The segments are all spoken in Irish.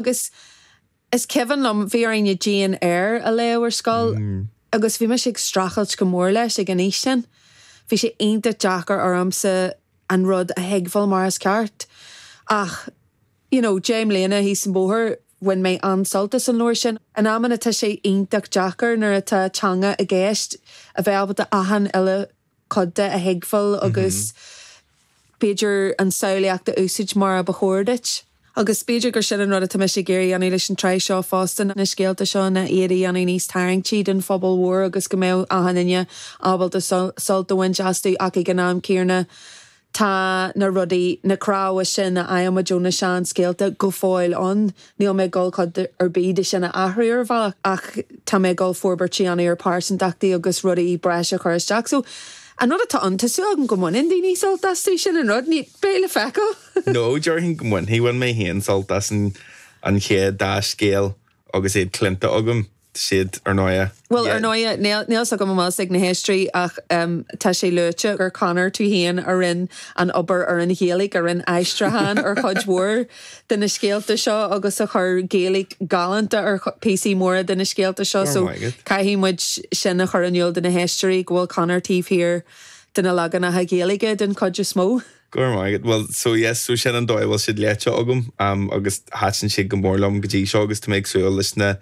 Agus is cuimhin liom, bhí orainn Jane Eyre a léamh ar scoil agus bhí mise ag streachailt go mór leis ag an aois sin. Bhí sé iontach deacair ormsa an rud a thuigbheáil mar is ceart. Ach, you know, deich mbliana thíos an bóthar, bhain mé an-sult as an leabhar sin. In amanna tá sé iontach deacair nuair atá teanga i gceist a bheith ábalta achan uile cuid de a thuigbheáil agus b'fhéidir an samhlaíocht a úsaid mar a ba chóir duit. Agus b'fhéidir gur sin an rud atá mise ag iarraidh a dhéanamh leis an tsraith seo fosta, na scéalta seo ná iarraidh iad a dhéanamh níos tarraingtí don phobal mhór agus go mbeadh achan duine ábalta sult a bhaint astu ach ag an am céarna Tá na rudaí, na cnámha sin a fhaighimid ó na seanscéalta go fóill ann. Níl mé ag dul cuid ar bith de sin a athrú ar bhealach ach tá mé ag dul forbairt a dhéanamh ar pearsantachtaí agus rudaí breise a chur isteach. So, an rud atá ann, tá súil agam go mbaineann daoine sult astu, sin an rud. Ní, beidh le feiceáil! No, déarfainn go mbainfidh. Bhain mé féin sult as an chéad dá scéal agus iad cluinte agam. iad. Bhuel, ar ndóighe, níl 's agam an bhfuil 's ag na héisteoirí ach tá sé luaite gur Conor, tú féin, a rinne an obair ar an Ghaeilge, a rinne aistriúchán ar chuid mhór de na scéalta seo agus a chuir Gaeilge galánta ar phíosaí móra de na scéalta seo so caithfidh muid sin a chur in iúl do na héisteoirí go bhfuil Conor taobh thiar de na leaganacha Gaeilge den chuid is mó. Go raibh maith agat. Bhuel, so yes, so sin an dóigh a bhfuil siad léite agam agus thaitin siad go mór liom go dtí seo agus tá mé ag súil leis na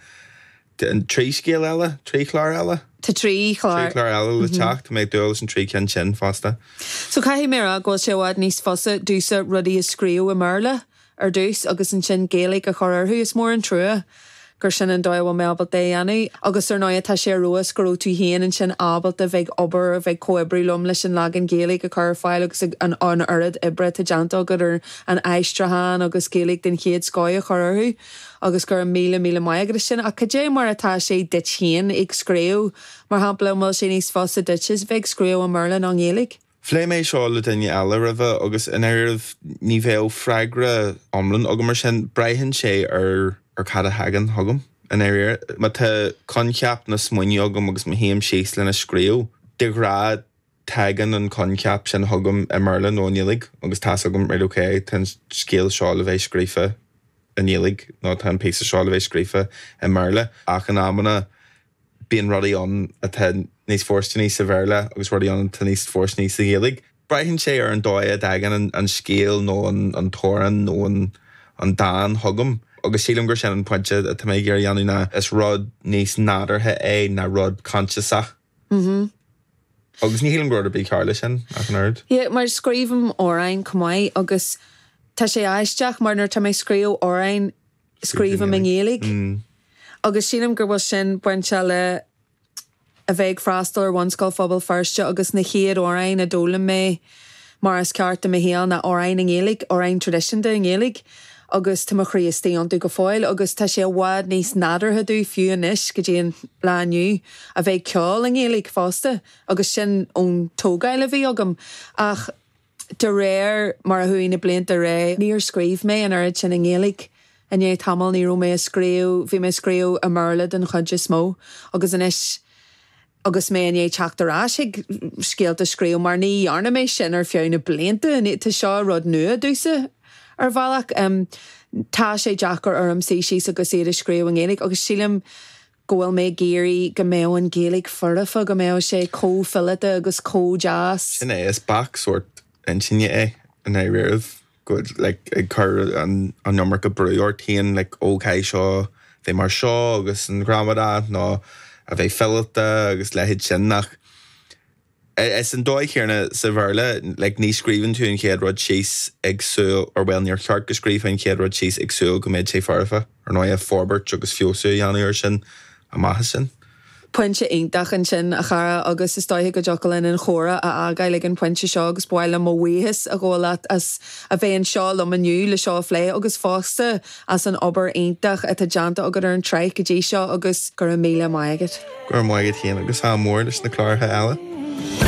trí scéal eile, trí chlár eile? Tá trí chlár. Trí chlár eile le teacht, tá mé ag dúil leis na trí cinn sin fosta. So caithfidh mé a rá go bhfuil sé i bhfad níos fusa, domhsa, rudaí a scríobh i mBéarla ar dtús agus ansin Gaeilge a chur orthu. Is mór an trua gur sin an dóigh a bhfuil mé ábalta é a dhéanamh. Agus ar ndóigh tá sé ar fheabhas go raibh tú féin ansin ábalta bheith ag obair, a bheith ag comhoibriú liom leis an leagan Gaeilge a chur ar fáil agus an oiread oibre atá déanta agat ar an aistriúchán agus Gaeilge den chéad scoth a chur orthu agus go raibh míle, míle maith agat as sin. Ach cad é mar atá sé duit féin ag scríobh, mar shampla, an bhfuil sé níos fusa duit a bheith ag scríobh i mBéarla ná i nGaeilge? Phléigh mé seo le daoine eile roimhe agus i ndáiríribh ní bheadh freagra iomlán agam ar sin. Braitheann sé ar cad a thagann chugam i ndáiríre. Má tá coincheap nó smaoineamh agam agus má shuím síos lena scríobh, de ghnáth tagann an coincheap sin chugam i mBéarla nó i nGaeilge agus tá's agam, right ok, tá an scéal seo le bheith scríofa i nGaeilge nó tá an píosa seo le bheith scríofa i mBéarla. Ach in amanna Bíonn rudaí ann atá níos fóirsteanaí sa Bhéarla agus rudaí ann atá níos fóirsteanaí sa Ghaeilge. Braitheann sé ar an dóigh a dtagann an scéal nó an t-amhrán nó an dán chugam agus sílim gur sin an pointe atá mé ag iarraidh a dhéanamh ná is rud níos nádúrtha é ná rud coinsiasach agus ní shílim go bhfuil rud ar bith cearr leis sin ach an oiread. Yeah, mar scríobhaim amhráin chomh maith agus tá sé aisteach mar nuair atá mé ag scríobh amhráin, scríobhaim i nGaeilge agus sílim gur bhfuil sin bainteach le a bheith ag freastal ar Bhunscoil Phobal Feirste agus na chéad amhráin a d'fhoghlaim mé mar is ceart i mo shaol ná amhráin i nGaeilge, amhráin traidisiúnta i nGaeilge agus tá mo chroí istigh iontu go fóill agus tá sé i bhfad níos nádúrtha domh fiú anois go dtí an lá inniu a bheith ag ceol i nGaeilge fosta agus sin ón tógáil a bhí agam ach De réir mar a chuaigh na blianta i ré, níor scríobh mé an oiread sin i nGaeilge. I ndiaidh tamaill, ní raibh mé ag scríobh, bhí mé ag scríobh i mBéarla den chuid is mó. Agus anois, agus mé i ndiaidh teacht ar ais chuig scéalta a scríobh, mar ní dhearna mé sin ar feadh na blianta, tá seo rud nua domhsa, ar bhealach. Tá sé deacair orm suí síos agus iad a scríobh i nGaeilge, agus sílim go bhfuil mé ag iarraidh go mbeadh an Ghaeilge foirfe, go mbeadh sé chomh fileata agus chomh deas. Sin é, is bac sórt intinne é i ndáiríribh, go bhfuil like ag cur an iomarca brú ort féin like oh caithfidh seo bheith mar seo agus an ghramadach nó a bheith fileata agus leithéid sin ach Ar an dóigh chéanna sa Bhéarla, like, ní scríobhann tú an chéad rud síos ag súil, or bhuel, níor cheart go scríobhfá an chéad rud síos ag súil go mbeidh sé foirfe. Ar ndóigh, forbairt agus feabhsú a dhéanamh air sin amach as sin. Pointe iontach ansin, a chara, agus is dóiche go dtiocfadh linn an comhrá a fhágáil ag an phointe seo agus ba mhaith liom mo bhuíochas a ghabháil leat as a bheith anseo liom inniu le seo a phlé agus fosta as an obair iontach atá déanta agat ar an tsraith go dtí seo agus go raibh míle maith agat. Go raibh maith agat féin agus ádh mór leis na cláracha eile.